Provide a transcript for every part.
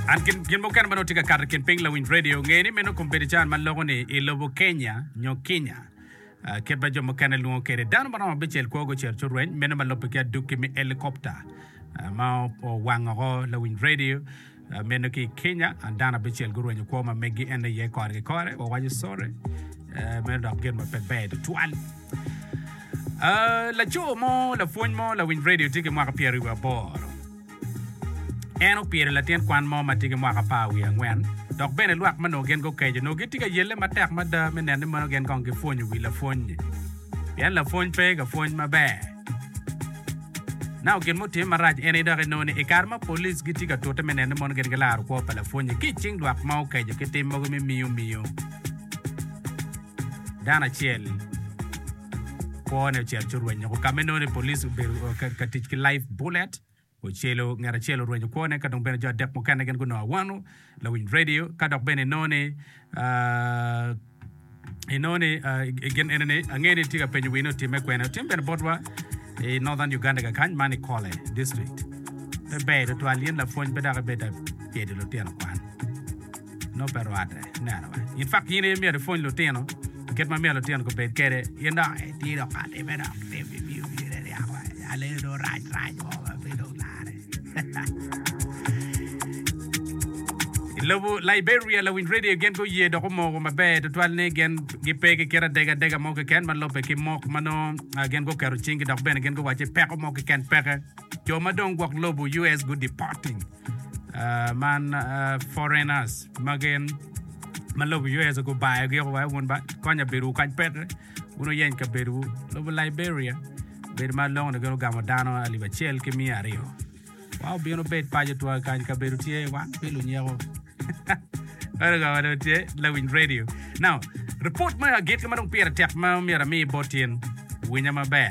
An gin mukene ma nongo tye ka kato i kin piny lawiny redio, ngeye ni meno Kompetichan ma loko ni i lobo Kenya nyo Kinya. Kit ma jo mukene lwongo kwede, dano ma romo abicel kwo gucito ci orweny, meno ma lobbe ki adukki me elikopta ma owango woko lawiny redio meno ki i Kenya. Dano abicel gurwenyo kwo ma megi en aye kore ki kore, wawaco sorry, meno dok gin ma pe ber tutwal. Laco mo, lapwony mo lawiny redio tye ki mwaka pyeraryo wiye aboro. En opyelo latin kwan mo ma tye ki mwaka apar wiye angwen, dok bene lwak ma onongo gin gukeco onongo gitye ka yelle matek mada me neno ni mono gin kong gipwonyo wi lapwony-nyi, pien lapwony pe ka pwony maber. Nao gin mutime marac eni dok inongo ni i kare ma polic gitye ka tute me neno ni mono gin gilaro kwo pa lapwony-nyi ki i cing lwak ma okeco ki tim mogo me miyo miyo dano acel, Kwone ocito ci orwenyo ko ka ma inongo ni police obedo ka tic ki live bullet. Ocelo ngat acel orwenyo kwone ka dong bene jo adek mukene gin gunongo awano lawiny radio ka dok bene inongo ni inongo ni gin ene ni ange ni tye ka penyo wine otimme kwene. Otim bene botwa i Northern Uganda ka kany man i Kole district. Pe ber tutwal in lapwony pe dok ibedo abyedi lutino kwan. Nongo pe rwatte. Neno bene. In twak in aye myero ipwony lutino pi kit ma myero lutino gubed kwede. In dok itye dok ka timme dok tim pi miyo myero iryak woko. Alele dong rac rac mo ma pe dong larre. I lobo Liberia, lawiny redio gin guye dok omoko maber tutwal ni gin gipe ki kit adega adega mo keken ma lubbe ki mok ma nongo gin guketo cinggi dok bene gin guwaco ni peko mo keken peke. Jo ma dong gwok lobo US gudeporting. man foreigners ma gin ma lobo US gubayo gi woko wek wun ba konya bedo kac petre wun wuyeny kabedo wu lobo Liberia bedo ma longo ni gin ogamo dano alip acel ki miya aryo wa obino bed paco twa kany kabedo tye wan pe lunyeko Ere ka wadon tye lawiny radio. Now, report me agit ma dong pire tek ma myero ami bot in winya maber.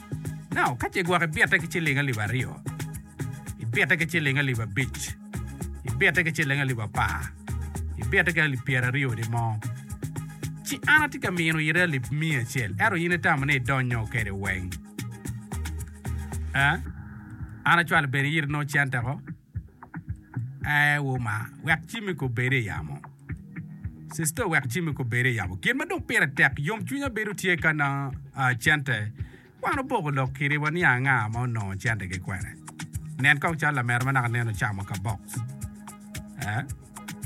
Nao ka ce gwok ibitte ki ciling alip aryo, ibitte ki ciling alip abic, ibitte ki ciling alip apar, ibitte ki alip pyeraryo ni mo, ci an atye ka mino ite alip miya acel, ento in itamo ni idonyo kede weng. An acwalo bene iri nongo cente ko. Ee, wu ma, wek cimmi kong bed i yamo. Sister, wek cimmi kong bed i yamo. Gin ma dong pire tek, yomcwinya bedo tye ka na ah, cente. Wan oboko lok kiri waniang anga ma onongo centegi kwene. Nen kong calo lamera ma naka nen ocamo ka box. Eh?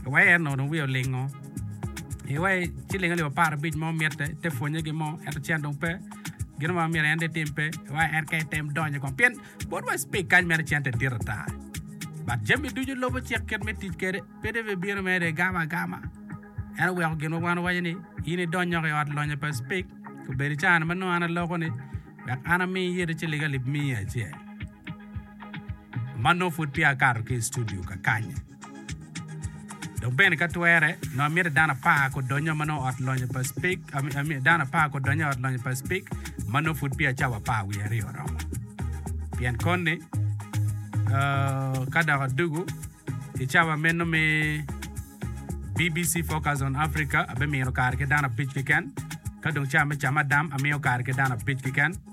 Iwee en ono wiye olingo. Iwee ciling alip apar abic mo mitte, te pwonye gin mo, ento cen dong pe. Gin mo ma myero en dong etim pe. Iwee en ka item donyo kong. Pien. Bot wa speak kany mere cente dit ata. But jami ducu lobo cik kit me tic kede pede be bino mere gamo agama. En oweko gin wa wan owaco ni in idony nyoko i ot lonyo pa speak obedo cana ma nongo an aloko ni wek an ami iyete cilig alip miya acel. Manno pud peya akato ki i studio kakanye. Dok bene ka twere, nongo amyero dano apar gudonyo ma nongo ot lonyo pa Speke, ami, ami, dano apar gudonyo i ot lonyo pa Speke ma nongo pud peya cawa apar wiye aryo oromo. Pien koni, uh, ka dok adugu i cawa meno me BBC Focus on Africa, abimino kare ki dano abic keken, ka dong ca me camadam amiyo kare ki dano abic keken.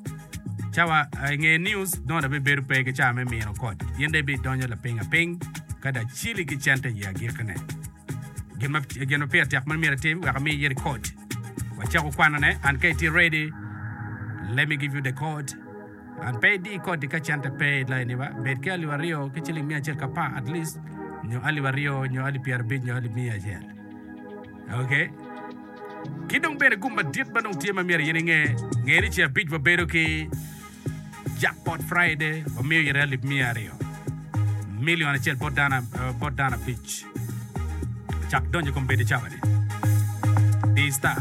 Cawa i nge news dong da bibedo pe ki cawa me mino koc, in dong ibidonyo lapiny apiny ka da cili ki cente i agikine. Gin ma gin ma pire tek ma myero itim wek ami iyiti koc. Wacako kwanone, and ka itye ready, let me give you the code. And pe idi koti ka cente pe i lainiwa, bed ki alip aryo ki ciling mia acel ki apar at least, nyo alip aryo, nyo alip pyerabic, nyo alip mia acel. Okay. Ki dong bene gum madit ma dong tye ma myero in inge, nge ni ce abic wabedo ki Jackpot Friday, wamiyo ite alip miya aryo, million acel bot dano, eh, bot dano abic. Cak donyo i kom bedi cawa ni. Di star.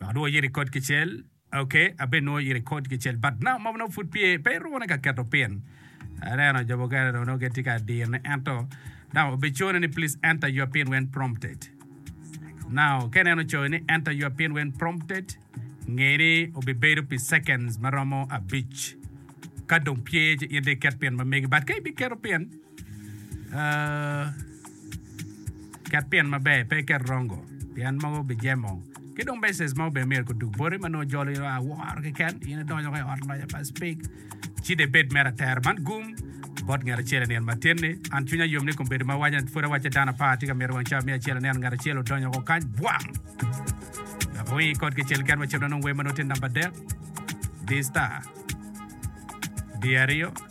Dok nwo iri kod kicel. Ok, abe nwo iri kod kicel but now mob nongo pud pye pe iruko ni ka keto pin. Aneno jo mukene dong nongo gitye ka dir ne ento now obe cone ni please enter your pin when prompted. Now ka ineno coyo ni enter your pin when prompted nge ni obe bedo pi seconds maromo abic ka dong pye ci in dong iket pin ma megi but ka ibi keto pin Ket pien maber, pe iket rongo, pien mogo bijemo. Ki dong meses ma obene myero kudug boti ma nongo jolo ino a woro keken in idonyo ka i ot loya pa cipik. Ci de bed mere atera man gum bot ngat acel i nino matin-ni. An cwinya yom ni kombeddi ma awaco-ni pud awacce dano apar tye ka myero wang cawa me acel aneno ngat acel odonyo woko kany bwang! Wek awingi kot kicel keken macalo nongo wer ma nongo tye namba adek. Di star. Di aryo.